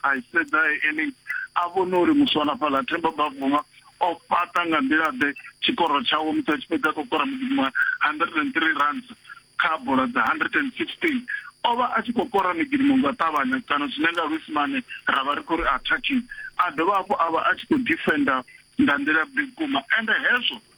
A sedza Ellis a vhona uri muswanafhaḽa Themba Bavuma o fhaṱa nga nḓila-ḓe tshikoro tshawe musi a tshi fhedza khou kora mugidi wa 103 runs kha bola dza 116. O vha a tshi khou kora migidimo nga u ṱavhanya kana zwine nga Luisimane ra vha ri khou ri attacking, a dovha hafhu a vha a tshi khou defender nga nḓila-ḓe vhukuma ende hezwo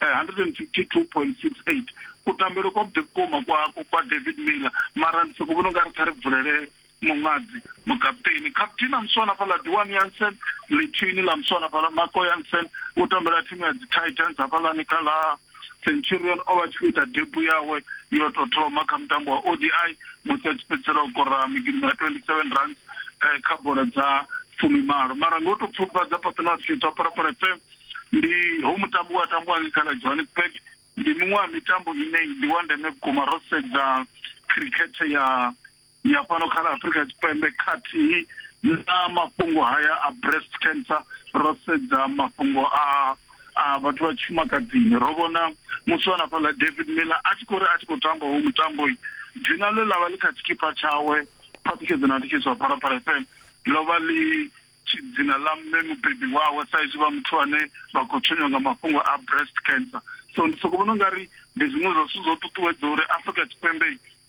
eh, 152.68 kutambele kwa vhuḓi vhukuma kwa kwa david miller mara ndi soko vhona ungari kha ri vulele muṅadzi mukaputeni captain a muswana fhaḽa duan yansen lithini ḽa muswana fhaḽa mako yansen u tambela thimu ya dzi titans hafhaḽani kha ḽa centurion o vha tshi khou ita debu yawe yo to thoma kha mutambo wa odi musi a tshi fhedzisela u kora migidimo ya 27 runs eh, kha bola dza fumimalo mara ngo to pfufhadza paṱonafiyo dza parapara fm ndi ho mutambo wa tambiwa ngei khala johannesburg ndi miṅwe ya mitambo ine ndi wa ndeme vhukuma ro sedza khirikhethe ya ya fhano kha ḽa afurika tshipembe khathihi na mafhungo haya a breast cancer ro sedza mafhungo a a vhathu vha tshifumakadzini ro vhona musi wa nafhaḽa david miller a tshi khou ri a tshi khou tamba ho mutambo dzina ḽe ḽa vha ḽi kha tshikipa tshawe phaṱhutshedzo na thikhedzo ya phalaphala fm ḽo vha ḽi tshi dzina ḽa mme mubebi wawe sa izwi vha muthu ane vha khou tshenywa nga mafhungo a breast cancer so ndi soko vhona u nga ri ndi zwiṅwe zwa zwithu zwo ṱuṱuwedza uri Afrika Tshipembe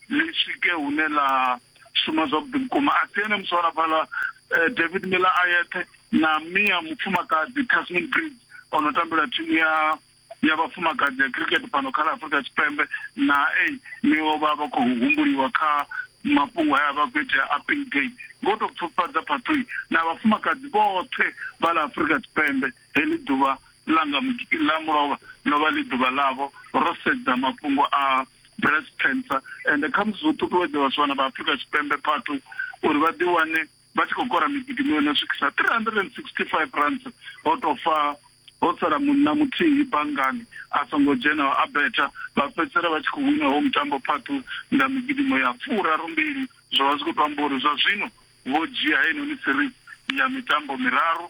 ḽi swike hune ḽa shuma zwavhuḓi vhukuma a si ene muswara fhaḽa eh, David Miller a yeṱhe na Mia mufumakadzi Tasmin Briggs ono tambela thimu ya ya vhafumakadzi ya cricket fhano kha ḽa Afurika Tshipembe na ei niwo vha vha khou humbuliwa kha mafhungo haya vha khou itea appeal day ngo tou pfufhadza phaṱhoi na vhafumakadzi vhoṱhe vha ḽa Afurika Tshipembe heḽi ḓuvha ḽa nga ḽa mulovha ḽo vha ḽi ḓuvha ḽavho ro sedza mafhungo a breast cancer ende khamusi zwo ṱuṱuwedza vhasiwana vha Afurika Tshipembe phaṱhoi uri vha ḓiwane vha tshi khou kora migidi miṅwe na swikisa 365 rands ho tou fa ho sala munna muthihi banngani a songo dzhena a betha vha fhedzisela vha tshi khou wina ho mutambo phaṱu nga migidimo ya furaru mbili zwo vha zwi khou tou amba uri zwa zwino vho dzhia heinoni series ya mitambo miraru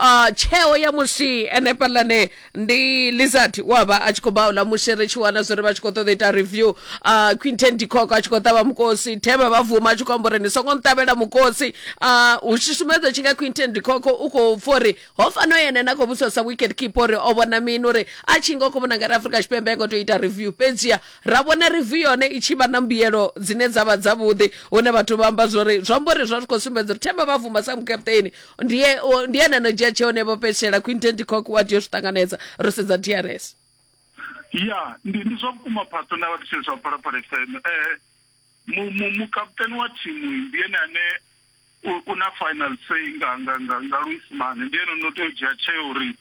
uh, tsheo ya musi enefhaḽane ndi lizard wa vha a tshi khou baula musi ri tshi wana zwori vha tshi khou ṱoḓa ita review uh, quinten dicok a tshi khou ṱavha mukosi thema vha vuma a tshi khou amba uri ni songo nṱavhela mukosi uh, u tshishumedzo tshi nga quinten dicok u khou pfa uri ho fano ene na khou vhudzisa sa wicket keeper uri o vhona mini uri a tshi nga u khou vhona ngari afrika tshipembe a ngo tou ita review fhedzia ra vhona review yone i tshi vha na mbuyelo dzine dza vha dzavhuḓi hune vhathu vha amba zwori zwi amba uri zwa zwi khou sumbedza uri thema vha vuma sa mukaputeni ndi e- o- ndi ene ano dzhia tsheo nevho fhetshela quinten ticock wa tea u zwi ṱanganedza ro sedza drs ya ndi ndi zwa vhukuma pastor na vhatshiri zwa phalaphala fm eh mu- mu- mukaputeni wa thimu ndi ene ane u- u na final say nga nga nga nga luisimane ndi ene no tea u dzhia tsheo uri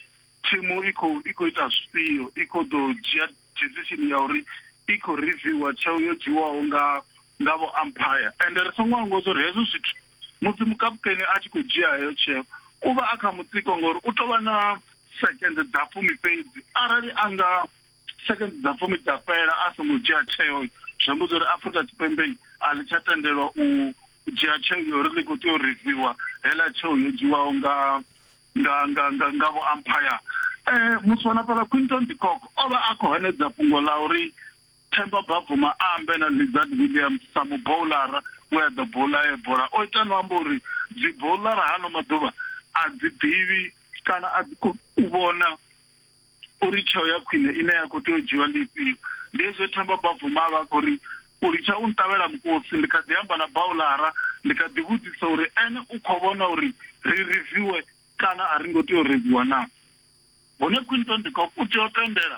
thimu i khou i khou ita zwifhio i khou ḓo dzhia decision ya uri i khou reviewer tsheo yo dzhiwaho nga nga vho umpire ende ri songo angwa uri hezwo zwithu musi mukaputeni a tshi khou dzhia heyo tsheo u vha a kha mutsiko ngori u tou vha na sekende dza fumi fhedzi arali a nga sekende dza fumi dza fhela a songo dzhia tsheo zwi amba uri afurika tshipembe a ḽi tsha tendelwa u dzhia tsheo ya uri ḽi khou tea u riviwa heḽa tsheo yo dzhiwaho nga nga nga nga nga vho ampire um muthu wa na fhaḽa quinton dikoko o vha a khou hanedza fhungo ḽa uri Themba Bavuma a ambela Lizard Williams sa muboulara we a ḓo boula e bola o ita no amba uri dziboulara hano maḓuvha a dzi ḓivhi kana a dzi khou vhona uri tsheo ya khwine ine ya khou tea u dzhiwa ndi ifhio ndi hezwo Themba Bavuma a vha khou ri u litsha u nṱavhela mukosi ndi kha ḓi amba na baulara ndi kha ḓi vhudzisa uri ene u khou vhona uri ri riviwe kana a ri ngo tea u riviwa na hone quinton de cock u tea u tendela